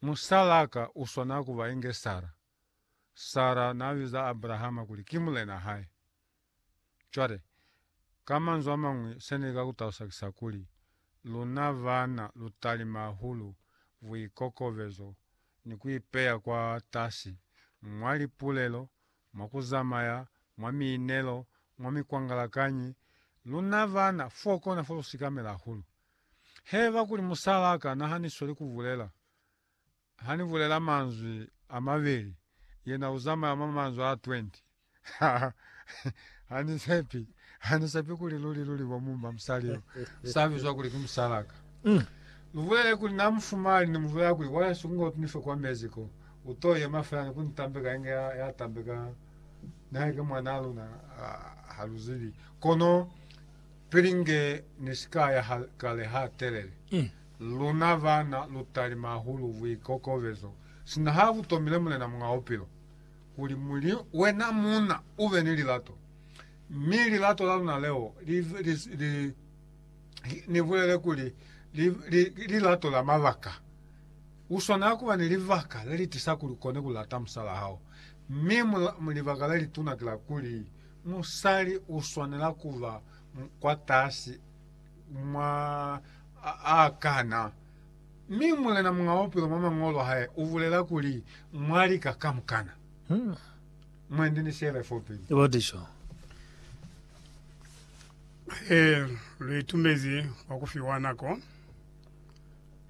Musalaka uswana kuba inge Sara. Sara naabiza Abrahama kuli ki mulena hae. Cwale, ka manzwi amañwi, seni ka kutalusa ki sa kuli, luna baana lutalima hahulu buikokobezo ni kuipeya kwatasi mwa lipulelo, mwa kuzamaya, mwa miinelo, mwa mikwangalakanyi. Luna baana, fokona fo lusikamela hahulu. Haiba kuli musalaa ka nahaniswa li kubulela, Hani bulela manzwi amabeli, yena uzamaya mwa manzwi a 20. Ha, Hani sepi, Hani sepi kuli luli luli bo mumba musali yo, sa bizwa kuli ki musalaa ka. Lubulele kuli na mufumani, ni mubulela kuli, Wa hesu, kunga utunife kwa mezi ko, uto yema fela ni kuni tambeka inge ya, ya tambeka, nihaike mwanaa luna ha, haluzibi. Kono. Pili nge ni si ka ya ha kale ha telele, luna bana lu talima hahulu buikokobezo sina ha bu tomile Mulena Muñ'a Bupilo, kuli muli wena muuna u be ni lilato. Mi lilato la luna leo li, li, li, ni bulele kuli li, li, lilato la mabaka. U swanela kuba ni libaka le li tisa kuli u kone ku lata musal'a hao. Mi mu, libaka le lituna ki la kuli Musali u swanela ku ba mukwatasi mwa a kana. Mi Mulena Muñ'a Bupilo mwa Mañolo a hae u bulela kuli, Mwa lika kamukana. Mwendi ni Shirley Forbes. Ee, lu itumezi kwa ku fiwa nako.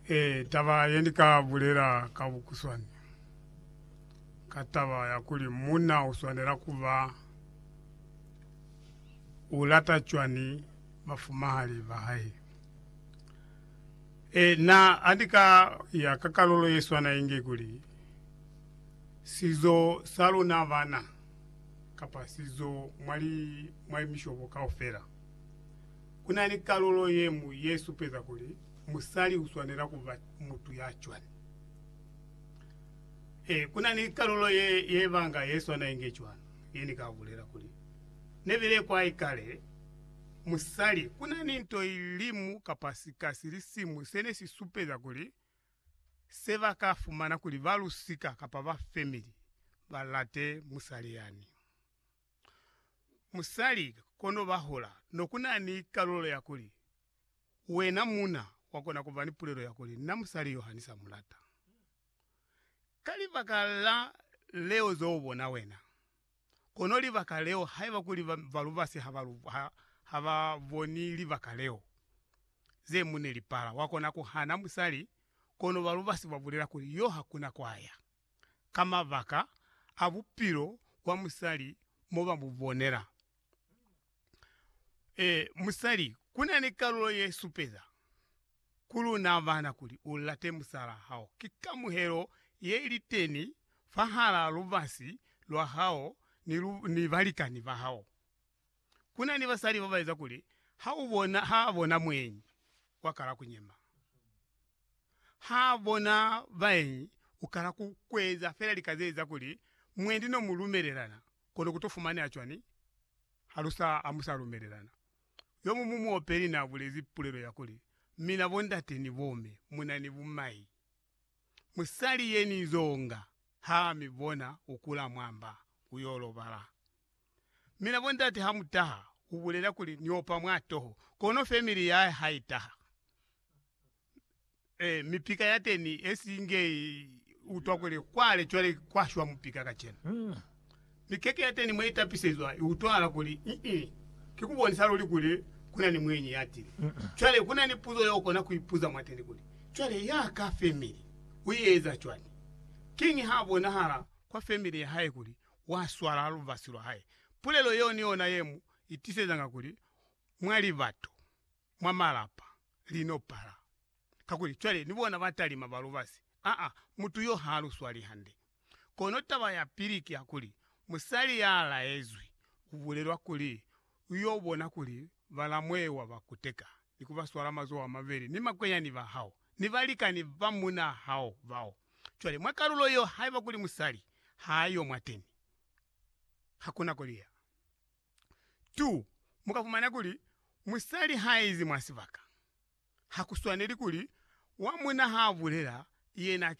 Ee, taba ye ni ka bulela ka bukuswani. ka taba ya kuli munna u swanela ku ba u lata cwani bafumahali ba hae. E, na a ni ka ya ka kalulo ye swana inge kuli, Sizo sa luna bana, kapa sizo mwa li, mwa limishobo kaufela. Ku na ni kalulo ye ñwi ye supeza kuli musali u swanela ku ba mutu ya cwani. Ee, ku na ni kalulo ye, ye banga ye swana inge cwani, ye ni ka bulela kuli, Ne bile kwai kale, musali. Ku na ni nto i limu kapa sika si li siñwi se ne si supeza kuli se ba ka fumana kuli ba lusika kapa ba femili ba late musali yani. Musali, kono ba hula, no ku na ni kalulo ya kuli, Wena muna, wa kona ku ba ni pulelo ya kuli, Na musali yo ha ni sa mu lata. Ka libaka la leo ze u bona wena, kono libaka leo, haiba kuli balubasi ha ba boni libaka leo, ze mu ne li pala. Wa kona ku hana musali, kono balubasi ba bulela kuli, Yo ha kuna kwa ya, ka mabaka a bupilo bwa musali mo ba mu bonela. Ee, musali kuna ni kalulo ye supeza. ku luna bana kuli u late musalaa hao ki kamuhelo ye li teni fahalaa lubasi lwa hao ni lu, ni balikani ba hao. Ku na ni basali ba ba eza kuli ha u bona, ha a bona muenyi, wa kala ku nyema. Ha a bona baenyi, u kala ku, ku eza fela lika ze eza kuli mwendi no mu lumelelana, kono ku to fumaneha cwani ha lu sa, ha mu sa lumelelana? Yo muñwi muopeli naabulezi pulelo ya kuli, Mina bondate ni bomme muna ni bumai, musali yenizonga haami bona ukula mwamba uyo lobala. Mina bondate hamutaha, ubulela kuli niopa mwatoho, kono family yahae haitaha. Eh mipika yateni esinge utwa kule kwale cwale kwashwa mupika kacenu. Mikeke yateni mwe itapisezwa iutwala kuli mm kikubonisa luli kuli kuna ni mwenyi yatile. Cwale kuna ni puzo yokona kuipuza mwateni kuli, cwale ya ka family uieza cwani? Kiñi ha bonahala kwa family yahae kuli waswala lubasi lwahae? Pulelo yeo ni yona yemu itisezanga kuli mwali batu mwa malapa li no pala. Kakuli cwale ni bona ba talima ba lubasi. Aa, mutu yo ha lu swali hande. Kono taba ya pili ki ya kuli, musali ya laezwi u bulelwa kuli u yo bona kuli balamwewa ba kuteka ni ku ba swala mazoho a mabeli ni makwenyani ba hao ni balikani ba munaa hao bao. Cwale, mwa kalulo yeo, haiba kuli musali ha yo mwateni, ha ku na ko li ya. 2 mukafumana kuli musali haizi mwasibaka, hakuswaneli kuli wa muna haabulela yena ke